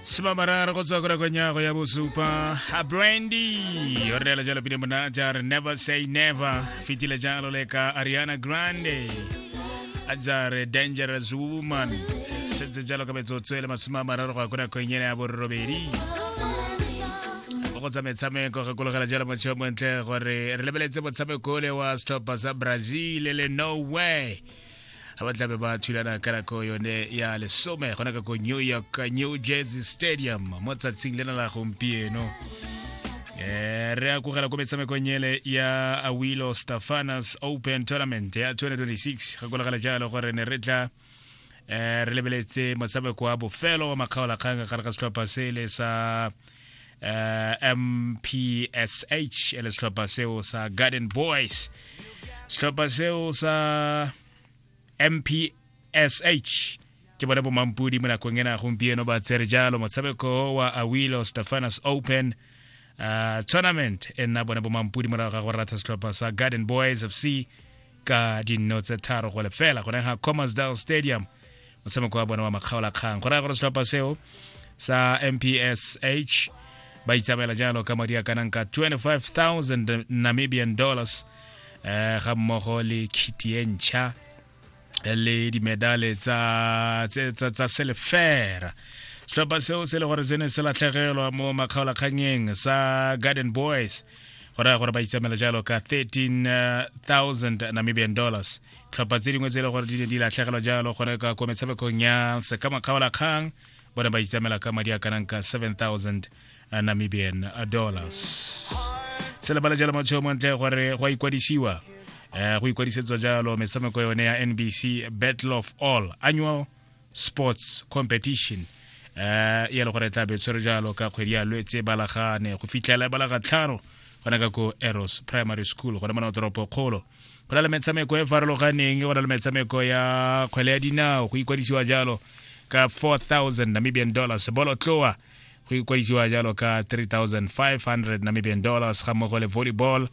simamararo go tswa kora konyago ya bosupa a brandy o reela jalo pele mona ja re never say never fetile jalo le ka ariana grande a ja re dangerous woman setse jalo ka metsotso e le masome a mararo go ya ko nakong ena ya borobedi mo go tsa metshameko re kologela jalo motsheo montle gore re lebeletse motshameko ole wa setlhopha sa brazil le no way ga ba tlabe ba thulana ka nako yone ya lesome gona ka ko new york new jersey stadium mo tsatsing lena la gompieno Eh, re a kogela ko metshamekong ele ya awilo stafanas open tournament ya 2026 ga kolagala jalo gore ne re tla um re lebeletse motshameko wa bofelo wa makgaolakgang gare ga setlhopha sele sa uh, mpsh e le setlhopha seo sa garden boys setlhopha seo sa mpsh ke bone bomampudi mo nakong ena gompieno ba tsere jalo motshameko wa awilo stefanus open uh, tournament e nna bone bomampudi morago ga go ratha setlhopha sa garden boys fc ka dinno tse tharo go lefela go ga commersdal stadium motshameko wa bone wa makgaolakgang go raya gore setlhopha seo sa mpsh ba itsamaela jalo ka madi a kanang ka 25000 namibian dollars eh ga mmogo le khiti e ntšha le dimedale tsa tsa tsa selefera setlhopha seo se le gore se ne se latlhegelwa mo makgaolakganyeng sa garden boys go raya gore ba itsamela jalo ka 13000 namibian dollars tlhopha tse dingwe tse e le gore di ne di latlhegelwa jalo gore ka ko metshamekong ya sekamakgaolakgang bone ba itsamela ka madi a kanang ka 7000 namibian dollars se lebala jalo motho mo ntle gore go a ikwadisiwa um go ikwadisetswa jalo metshameko yone ya nbc battle of all annual sports competition eh e le gore tla be tshwere jalo ka kgwedi ya lwetse balagane go fitlhela balaga tlhano gona ka ko eros primary school gone mona toropo kgolo go na le metshameko e farologaneng go na le metshameko ya kgwele ya dinao go ikwadisiwa jalo ka 4000 namibian dollars bolotloa go ikwadisiwa jalo ka 3500 namibian dollars ga mmogo le volleyball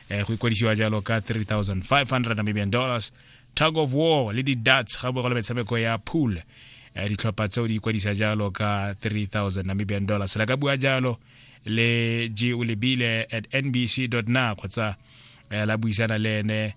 eh, go ikwadisiwa jalo ka 3500 namibian dollars tug of war le di-dats ga bogolo metshameko ya pool eh, ditlhopha tseo di ikwadisa jalo ka 3000 namibian dollars la ka bua jalo le g o lebile at nbc na kgotsa eh, la buisana le ene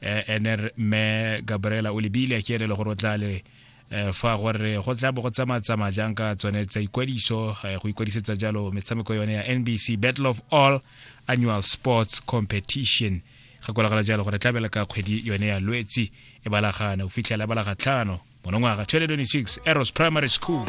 eh, ene mme gabriela o lebile ke ene le gore o tla le Eh, fa gore go tla bo go tsamatsamaya jang ka tsone tsa ikwadiso eh, go ikwadisetsa jalo metshameko yone ya nbc battle of all annual sports competition ga kolagala jalo gore tlabela ka kgwedi yone ya lwetsi e balagane o fitlhela e balaga tlhano monongwaga 2026 eros primary school